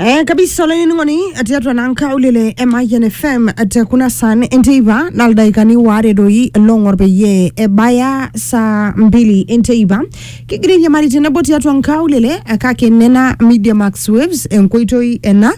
Eh, kabisa olainining'oni tiatua naa nkaulele e Mayian FM te kuna san enteipa naa ildaikani waare doi long'or peyie ebaya saa mbili enteipa kigira airiamari tenebo tiatua nkaulele eh, kake nena media max waves enkoitoi ena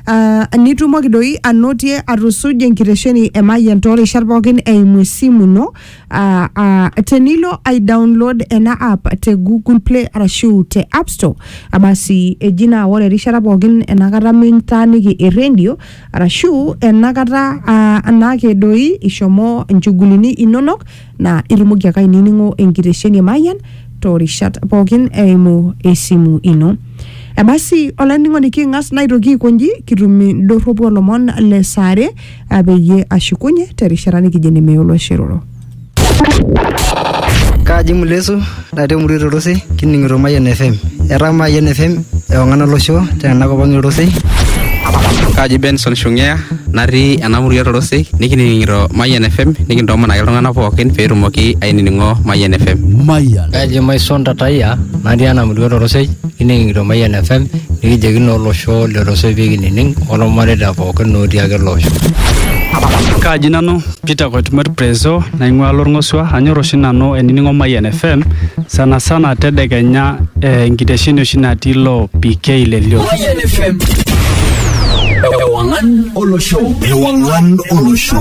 ah, nitumoki doi anotie atusuja enkitesheni e Mayian toorishat pookin eimu esimu ino Uh, uh, tenilo ai download ena app te google play arashu te app store abasi eji naa ore erishata pookin enakata mintaaniki erendio arashu enakata uh, anaake doi ishomo inchugulini inonok naa itumoki ake ainining'o enkitesheni e mayian toorishat pookin eimu esimu ino ebasi olainining'oni king'as naitoki aikonji kitum indorropu olomon le saare apeyie ashukunye terishata nikijo enemeyu olosiroro. Kaaji Mulesu natii emurua Torosei kining'ito Mayian FM. Etaa Mayian FM ewang'an olosho tena kop ang' e Torosei. Kaaji Benson Shung'ea natii ena murua Torosei nikining'ito Mayian FM nikintoomon ake iltung'anak pookin pee etumoki ainining'o Mayian FM. Mayian. Kaaji Maison Tatayia natii ena murua Torosei Kining'ito Mayian FM nikijoki naa olosho lorosoi pee kinining olmareita pookin otii ake ele osho. Kaaji nanu Peter Koitumor Prezo naing'ua Lorng'osua anyor oshi nanu ainining'o Mayian FM sana sana tedekenya eh, enkitesheni oshi natii ilo PK le Lio. Mayian FM. Ewang'an olosho. Ewang'an olosho.